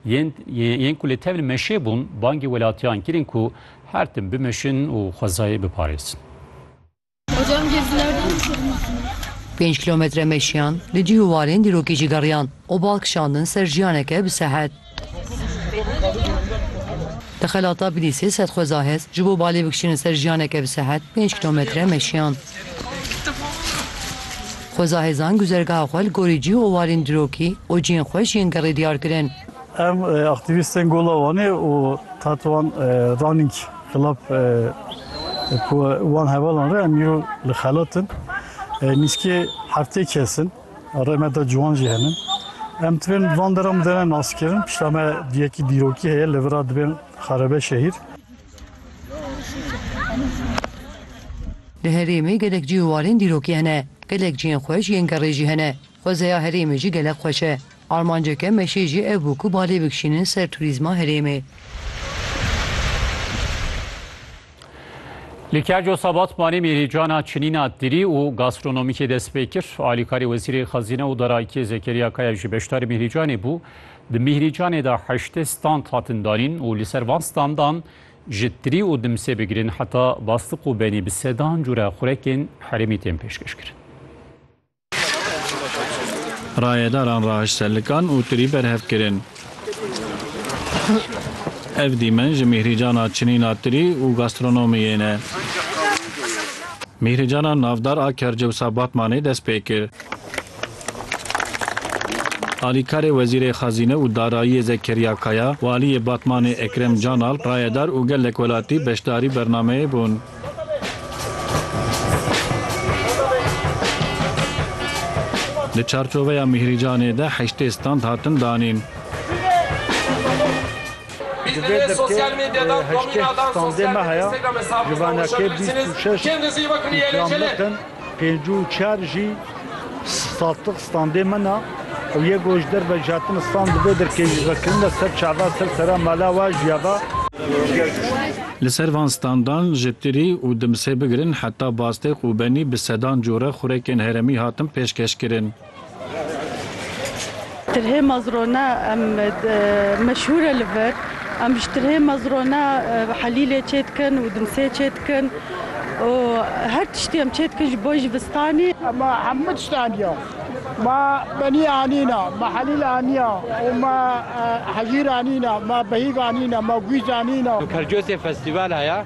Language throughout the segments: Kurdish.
Yên yên ku li tevlî meşê bûn bangê welatiyan kirin ku her tim bimeşin û xwezayê biparêzin. Pênc kilometre meşiyan, li cih û warên dîrokê jî geriyan û bal kişandin ser jiyaneke bi sehet. Di xelata Bilîsê sed xweza hez ji bo balê bikişînin ser jiyaneke bi sehet pênc kilometre meşiyan. Xweza hêzan guzergaha xwe li gorî cî û walên dirokî û ciyên xwe ji yên gerê diyar kirin. Em aktîvîstên Gola Wanê û Tatoan Running Club ku wan hevalan re em îro li xelat in. Nîskê heftê kes in. Rê me de ciwan jî hene. Em divên van deran bidêne naskirin. Pişta me du yekî dîrokî heye, li vir a dibên xerebe şehîr. Di herêmê gelek cih û alên dîrokî hene. Gelek cihên xweş yên gerê jî hene. Xwezeya herêmê jî gelek xweş e. Armanceke meşê jî ev bû ku balê bikişînin ser turîzma herêmê. Li Kerco Sabatmanê mêrîcana çinîna dirî û gastronomîkê dest pê kir. Alîkarê Wezîrê Xezîne û Darayîtiye Zekeriya Kaya jî beşdarî mêrîcanê bû. Di Mîhrîcanê de heştê stand hatin danîn û li ser van standan ji tirî û dimsê bigirin heta bastiq û benî bi sedan cure xurekên herêmî tên pêşkêş kirin. Rayedaran rahiş ser likan û tirî berhev kirin. Ev dîmen ji Mîhrîcana çinîna tirî û gastronomiyê ne. Mîhrîcana navdar a Kercewsa Batmanê dest pê kir. Alîkarê Wezîrê Xezîne û Darayiyê Zekeriya Kaya û Aliyê Batmanê Ekrem Canalp rayedar û gelek welatî beşdarî bernameyê bûn. Di çarçoveya mîhrîcanê de heştê stand hatin danîn. Di vê dirkê de heştê standê me heye, ji venekê bîst û şeş îkramlik in. Pênc û çar jî saztiq standê min a û yê ku ji derve jatin stand dibe derkêjîvekirine ser çavê ser sera mala we ji ya ve. Li ser van standan ji tirî û dimsê bigirin heta bastêq û benî bi sedan cure xurekên heremî hatin pêşkeşkirin. Tirhê Mazrone em meşhûr e li vir. Em ji tirhê Mazrone helîlê çê dikin û dimsê çê dikin û her tiştî em çê dikin ji bo jivistanê. Me hemû tişt aniye. Me benî anîne, me helîl aniye û me hejîr anîne, me behîv anîne, me gûj anîne. Percosê festîvala ya.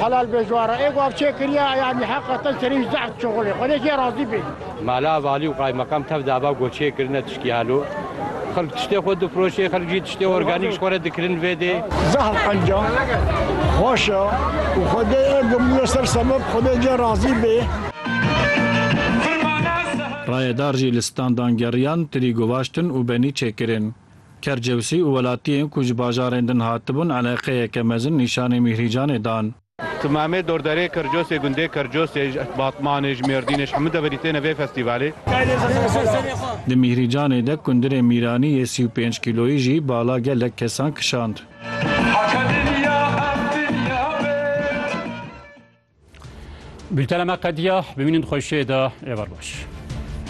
Helal be Juara, ê ku ev çê kiriye eyanî heqa te serî ji zehf çixulê. Xwedê jê razî bê. Mala valî û qaymakam tev dava ku çê kirine tiştî helo. Xelk tiştê xwe difiroşê, xelk jî tiştê organîk ji xwe re dikirin vê dê. Zehf qenca, xweş e û xwedê ê gimîye ser semeb. Xwedê cê razî bê. Rayedar jî li standan geriyan, tirî guvaştin û benî çêkirin. Kercewsî û welatiyên ku ji bajarên din hatibûn eleqeyeke mezin nîşanî Mîhrîcanê dan. Ki Mehmet dordarê Kercosê gundê Kercosê ji Batmanê, ji Mêrdînê, ji hemû deverî têne vê festîvalê. Di Mîhrîcanê de kundirê Mîranî yê sî û pênc kîloyî jî bala gelek kesan kişand. Bûltena me qediya, bimînin xweşiyê de, êvar baş.